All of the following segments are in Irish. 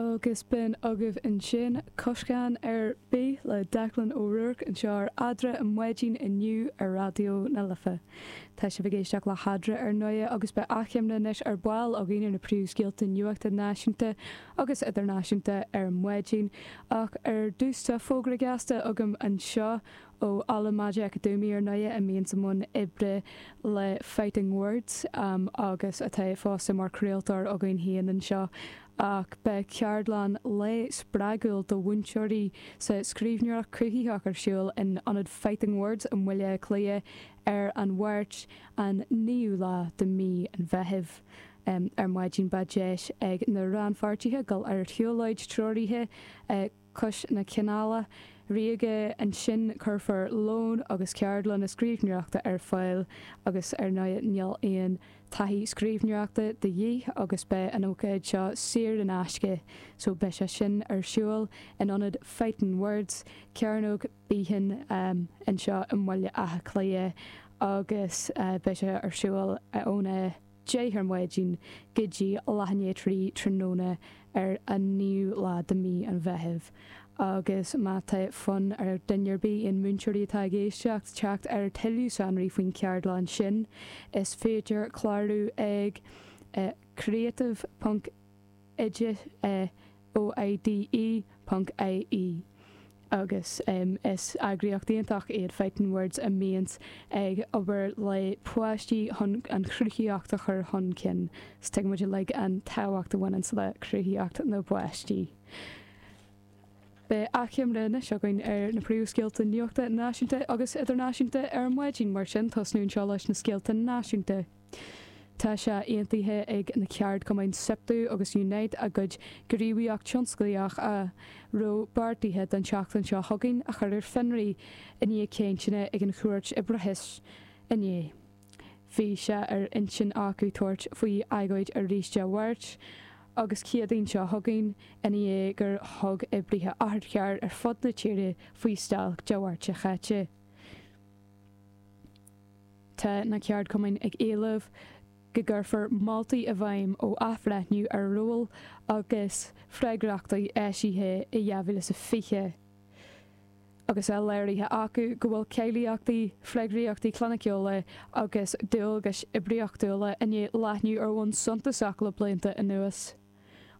Agus b'in agaibh ansin Coscán ar bith le Declan O'Rourke anseo ar Eadra ar maidin inniu ar Raidió na Life. Tá sibh ag éisteacht le hEadra ar ndóigh agus beidh achoimre anois ar ball againn ar na príomhscéalta nuachta náisiúnta agus idirnáisiúnta ar maidin ach ar dtús tá fógra gasta agam anseo Ó Ola Majekodunmi ar ndóigh, a mbíonns i mbun oibre le Fighting Words agus atá fosta mar chraoltóir againn féin anseo, ach beidh ceardlann lae spreagúil do mhúinteoirí sa scríbhneoireacht cruthaitheach ar siúl in Ionad Fighting Words i mBaile Átha Cliath ar an Mháirt, an naoú lá de mhí an Mheithimh. Ar maidin beidh deis ag na rannpháirtithe dul ar shiúlóid treoraithe, cois na Canála Ríoga. Ansin cuirfear lón agus ceardlanna scríbhneoireachta ar fáil agus ar ndóigh níl aon taithí scríbhneoireachta de dhíth agus beidh an ócáid seo saor in aisce so beidh sé sin ar siúl in ionad Fighting Words, Cearnóg Behan anseo i mBaile Átha Cliath agus beidh sé ar siúl óna. 10 ar maidin go dtí leath i ndiaidh trí tráthnóna ar an 9ú lá de mí an Mheithimh agus má tá fonn ar dhuine ar bith, aon múinteoirí atá ag éisteacht, teacht ar tuilleadh sonraí faoin gceardlann sin is féidir clárú ag creative. oide é O I D E, ponc, IE agus is eagraíocht iontach iad Fighting Words a mbíonns ag obair le páistí chun an chruthaíocht a chur chun cinn 's tuigeann muid uilig an tábhacht a bhaineanns le cruthaitheacht na bpáistí. Beidh achoimre anois againn ar na príomhscéalta nuachta náisiúnta agus idirnáisiúnta ar maidin, mar sin tosnú anseo leis na scéalta náisiúnta. Tá sé aontaithe ag na ceardchumainn Siptu agus Unite a gcuid gníomhaíocht tionsclaíoch a raibh beartaithe don tseachtain seo chugainn a chur ar fionraí i ndiaidh cainteanna ag an Chúirt Oibreachais inné. Bhí sé ar intinn acu tabhairt faoi agóid arís Dé Mháirt agus Céadaoin seo chugainn i ndiaidh gur thug oibrithe otharchairr ar fud na tíre faoi stailc Dé Mháirt seo caite. Tá na ceardchumainn ag éileamh go gcuirfear moltaí i bhfeidhm ó Athbhreithniú ar Róil agus Freagrachtaí eisithe i 2020 agus é léirithe acu go bhfuil cáilíochtaí, freagraíochtaí cliniciúla agus dualgais oibríochtúla i ndiaidh leathnú ar bhonn suntasach le blianta anuas.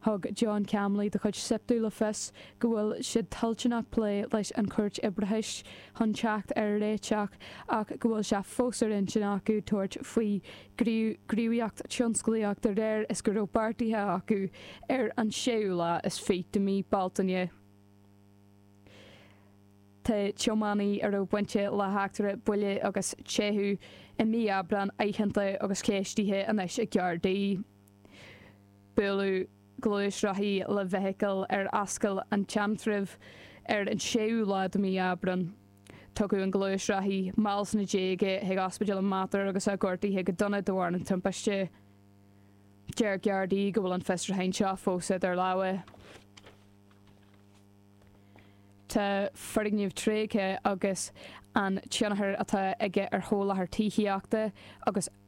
Thug John Conley de chuid Siptu le fios go bhfuil siad toilteanach plé leis an Chúirt Oibreachais chun teacht ar réiteach ach go bhfuil sé fós ar intinn acu tabhairt faoi ghníomhaíocht tionsclaíoch de réir is go raibh beartaithe acu ar an tséú lá is fiche de mhí Bealtaine. Tá tiománaí a raibh bainte le heachtra buille agus teitheadh i mí Aibreáin aitheanta agus ceistithe anois ag Gardaí. Buaileadh gluaisrothaí le feithicil ar Ascaill an tSeantraibh ar an séú lá de mhí Aibreán. Tugadh an gluaisrothaí mall sna déaga chuig Ospidéal an Mater agus é gortaithe go dona de bharr an timpiste. Deir Gardaí go bhfuil an fiosrúcháin seo fós idir lámha. Tá foirgnimh tréigthe agus an tionchar atá aige ar sholáthar tithíochta agus.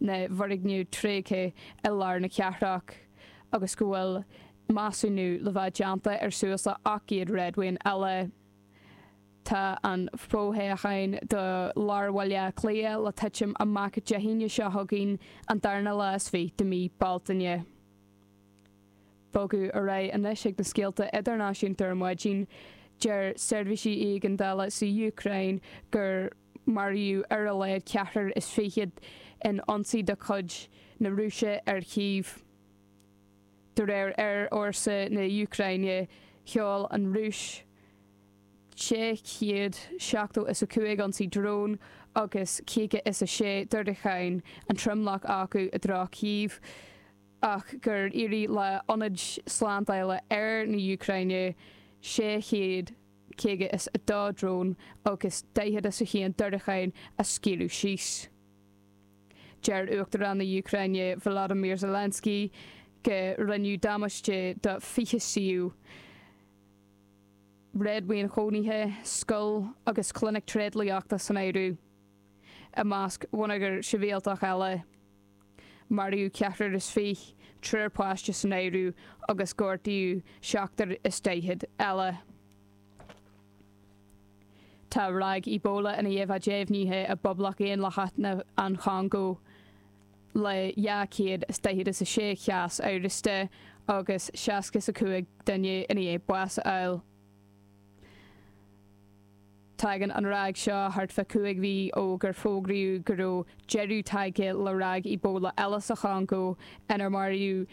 na bhfoirgneamh tréigthe i lár na cathrach agus go bhfuil measúnú le bheith déanta ar suas le 800 réadmhaoin eile. Tá an fothoghchán do lár Bhaile Átha Cliath le titim amach Dé hAoine seo chugainn, an darna lá is fiche de mí Bealtaine. Bogadh ar aghaidh anois chuig na scéalta idirnáisiúnta ar maidin. Deir seirbhísí éigeandála sa Úcráin gur. Maraíodh ar a laghad ceathrar is fichead in ionsaí de chuid na Rúise ar Chív. De réir aerfhórsa na Úcráine, sheol an Rúis 670 is a cúig ionsaí drón agus caoga is a sé diúracáin, an tromlach acu i dtreo Chív, ach gur éirigh le hionaid slándála aeir na Úcráine 600 caoga is a dó drón agus daichead is a haon diúracáin a scaoileadh síos. Deir Uachtarán na Úcráine Volodymyr Zelensky go rinneadh damáiste do fiche suíomh réadmhaoin chónaithe, scoil agus clinic tréidlíochta san áireamh, i measc bhonneagar sibhialtach eile. maraíodh ceathrar is fiche triúr páiste san áireamh agus gortaíodh seachtar is daichead eile. Tá ráig Ebola i ndiaidh a bheith deimhnithe i bPoblacht Dhaonlathach na an Chongó le dhá chéad is daichead is a sé chás amhrasta agus seasca is a cúig duine i ndiaidh bás a fháil. Tagann an ráig seo thart fá cúig mhí ó gur fógraíodh go raibh deireadh tagtha le ráig Ebola eile sa Chongó inar maraíodh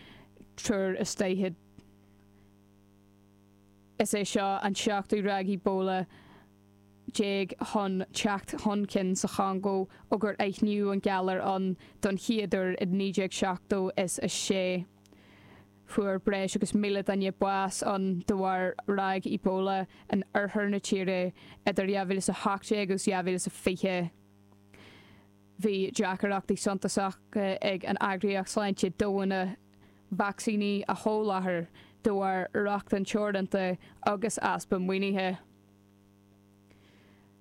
triúr is daichead. Is é seo an seachtú ráig Ebola déag chun teacht chun cinn sa Chongó ó gur aithníodh an galar ann don chéad uair i 1970 is a sé Fuair breis agus míle duine bás ann de bharr ráig Ebola in oirthear na tíre idir 2018 agus 2020. Bhí deacaireachtaí suntasacha ag an Eagraíocht Sláinte Domhanda vacsaíní a sholáthar de bharr rochtain teoranta agus easpa maoinithe.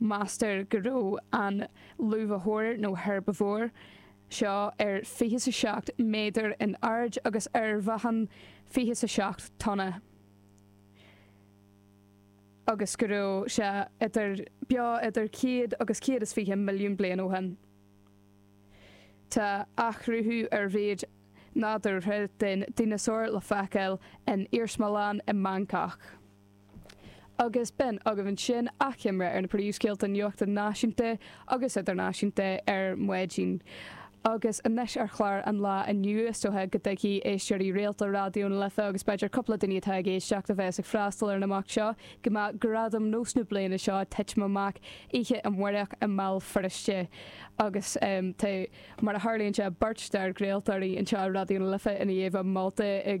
Meastar go raibh an luibhiteoir, nó herbivore, seo ar fiche is a seacht méadar in airde agus ar mheáchan fiche is a seacht tonna, agus go raibh sé idir beo idir céad agus céad is fiche milliún bliain ó shin. Tá athchruthú ar mhéid nádúrtha den dineasár le feiceáil in iarsmalann i mBangcác. agus b'in agaibh ansin achoimre ar na príomhscéalta nuachta náisiúnta agus idirnáisiúnta ar maidin agus anois ar chlár an lae inniu. Is dócha go dtuigfidh éisteoirí rialta Raidió na Life, agus b'fhéidir cúpla duine atá ag éisteacht a bheas ag freastal ar an imeacht seo, go mbeidh Gradaim NÓS na bliana seo ag titim amach oíche amárach i mBéal Feirste agus tá, mar a tharlaíonn sé, beirt dár gcraoltóirí anseo i Raidió na Life i ndiaidh a molta i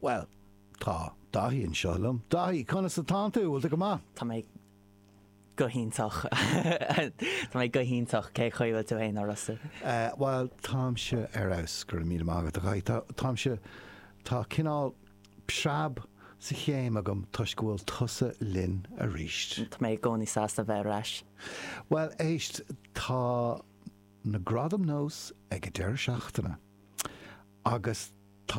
Bhuel, tá Daithí anseo liom. Daithí, conas atánn tú? Bhfuil tú go maith? Tá mé go hiontach. Tá mé go hiontach. Cé chaoi bhfuil tú fhéin, a Russell? Eh, bhuel, táimse ar fheabhas, go raibh míle maith agat, a Dhaithí. Tá, táimse, tá cineál preab sa chéim agam toisc go bhfuil tusa linn aríst. Tá mé i gcónaí sásta bheith ar ais. Bhuel, éist, tá na Gradaim NÓS ag an deireadh seachtaine agus tá